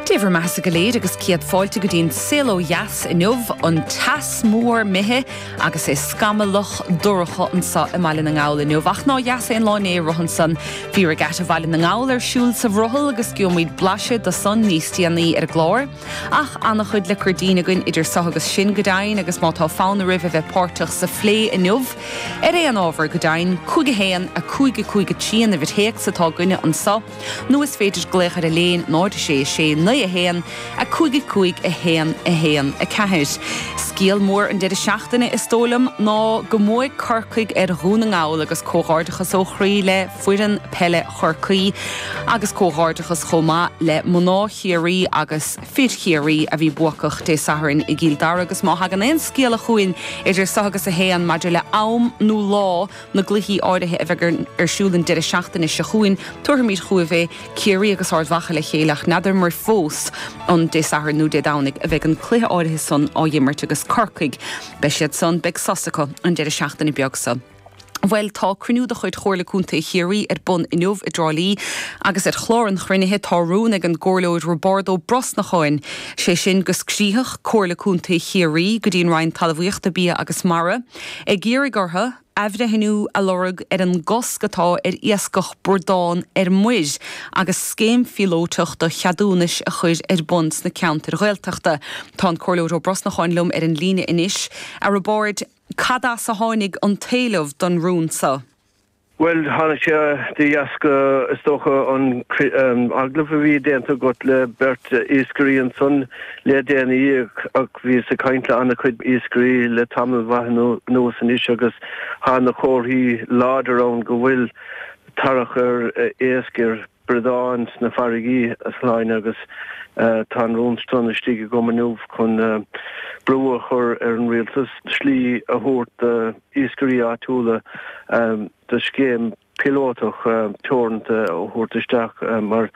Dé bhur mbeathasa go léir agus céad fáilte go dtí an Saol Ó Dheas inniu, an teas mór imithe agus é scamallach dorcha anso i mBaile na nGall inniu. Ach nár dheas an lá inné ar a shon san. Bhí regatta Bhaile na nGall ar siúl sa bhrothall agus gheobhaimid blaiseadh do san níos déanaí ar an gclár. Ach an-chuid le cur dínn againn idir so agus sin go deimhin agus má tá fonn oraibh a bheith páirteach sa phlé inniu ar aon ábhar go deimhin, 51 55 3 an uimhir théacs atá againne anso. Nó is féidir glaoch ar Elaine 0 6 6 9 1 5 5 1 1 4. Scéal mór an deireadh seachtaine, is dóigh liom, ná go mbuaigh Corcaigh ar Dhún na nGall agus comhghairdeachas ó chroí le foireann peile Chorcaí agus comhghairdeachas chomh maith le mná Chiarraí agus fir Chiarraí a bhí buacach Dé Sathairn i gCill Dara agus má thagann aon scéala chugainn idir so agus a haon maidir le am nó lá na gcluichí áirithe a bheidh ar siúl an deireadh seachtaine seo chugainn, tabharfaimid chugaibh é, Ciarraí agus Ard Mhacha le chéile, ach n'fheadramar fós an Dé Sathairn nó Dé Domhnaigh a bheidh an cluiche áirithe san á imirt agus Corcaigh, beidh siad san, beidh sos acu an deireadh seachtaine beag so. Bhuel, tá cruinniú de chuid Chomhairle Contae Chiarraí ar bun inniu i dTrá Lí agus ar chlár an chruinnithe tá rún ag an gComhairleoir Roibeárd Ó Brosnacháin, sé sin, go scríofadh Comhairle Contae Chiarraí go dtí an Roinn Talamhaíochta, Bia agus Mara, ag iarraidh orthu athbhreithniú a lorg ar an gcosc atá ar iascach bradán ar muir agus scéim phíolótach do cheadúnais a chur ar bun sna ceantair Ghaeltachta. Tá an Comhairleoir Ó Brosnacháin liom ar an líne anois. A Roibeáird, cad as a tháinig an t-éileamh don rún seo? Bhuel, tháinig sé de dheasca, is dócha, an agallamh a bhí déanta agat le beirt iascairí ansan le déanaí ach bhíos ag caint le an-chuid iascairí le tamall mhaith anuas anois agus tá na comharthaí láidir ann go bhfuil tarrac ar iasc ar Bradán sna farraigí a shloinn agus tá an rún san istigh agam inniu chun brú a chur ar an Rialtas slí a thabhairt d'iascairí áitiúla do scéim píolótach teoranta a thabhairt isteach mar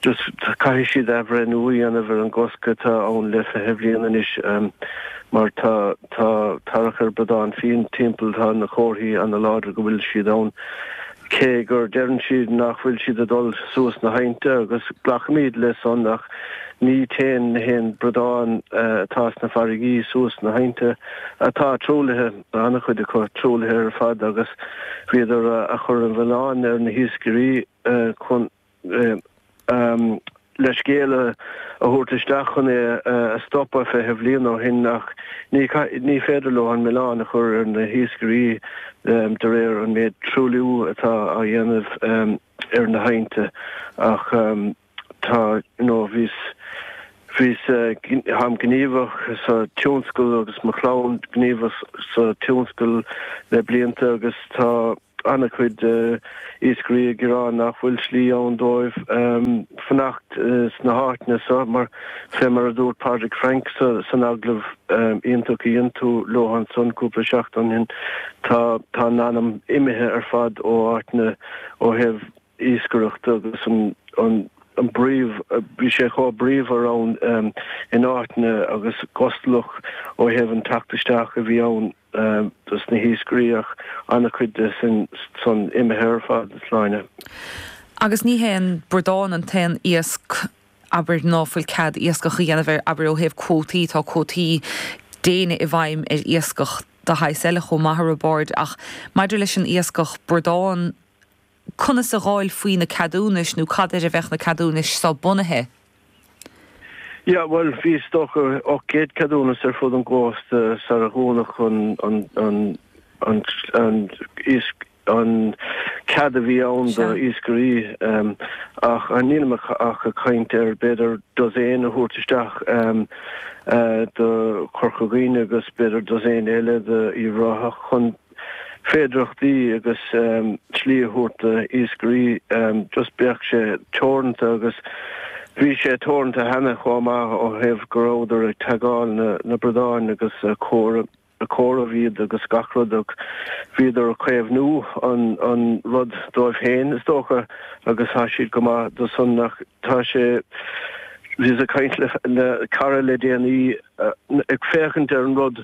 caithfidh siad athbhreithniú a dhéanamh ar an gcosc atá ann le fiche bliain anois mar tá tarrac ar bradán fiáin timpeall tá na comharthaí an-láidir go bhfuil siad ann. cé gur deireann siad nach bhfuil siad ag dul suas na haibhnte agus glacaimid le san ach ní téann na haon bradán atá sna farraigí suas na haibhnte atá truaillithe, an-chuid acu truaillithe ar fad agus bhíodar ag cur an mhilleáin ar na hiascairí chun leithscéal a thabhairt isteach chun é a stopadh fiche bhliain ó shin ach ní féidir leo an milleán a chur ar na hiascairí de réir an méid truailliú atá á dhéanamh ar na haibhnte ach tá you know bhíos táim gníomhach sa tionscal agus mo chlann gníomhach sa tionscal le blianta agus tá. an-chuid iascairí ag rá nach bhfuil slí ann dóibh fanacht sna háiteanna seo mar, fé mar a dúirt Pádraig Frank san agallamh iontach a dhein tú leis ansan cúpla seachtain ó shin, tá an t-anam imithe ar fad ó áiteanna ó thaobh. iascaireachta agus an bpríomh, bhí sé chomh bríomhar ann in áiteanna agus gustalach ó thaobh an teacht isteach a bhí ann dos na hiascairí ach an-chuid de san imithe ar fad is léir. Agus ní hé an bradán an t-aon iasc, abair, ná fuil cead iascach a dhéanamh air, abair, ó thaobh cuótaí, tá cuótaí diana i bhfeidhm ar iascach de shaghas eile chomh maith ar bháid ach maidir leis an iascach bradán, conas a gheobhfá faoi na ceadúnais nó cad ar a bheadh na ceadúnais seo bunaithe? Yeah, bhuel, bhí is dócha ocht gcéad ceadúnas ar fud an chósta sarar dúnadh an cead a bhí ann do iascairí ach nílim ach ag caint ar b'fhéidir dosaen a thabhairt isteach do Chorca Dhuibhne agus b'fhéidir dosaen eile do Uíbh Ráthach chun féidearthachtaí agus slí a thabhairt do iascairí just bheadh sé teoranta agus bhí sé teoranta cheana chomh maith ó thaobh go rabhadar ag taggáil na na bradáin agus a comhaireamh iad agus gach rud agus bhíodar a caomhnú an an rud dóibh féin is dócha agus thá siad go maith dó san ach tá sé bhíos a caint le cara le déanaí ag féachaint ar an rud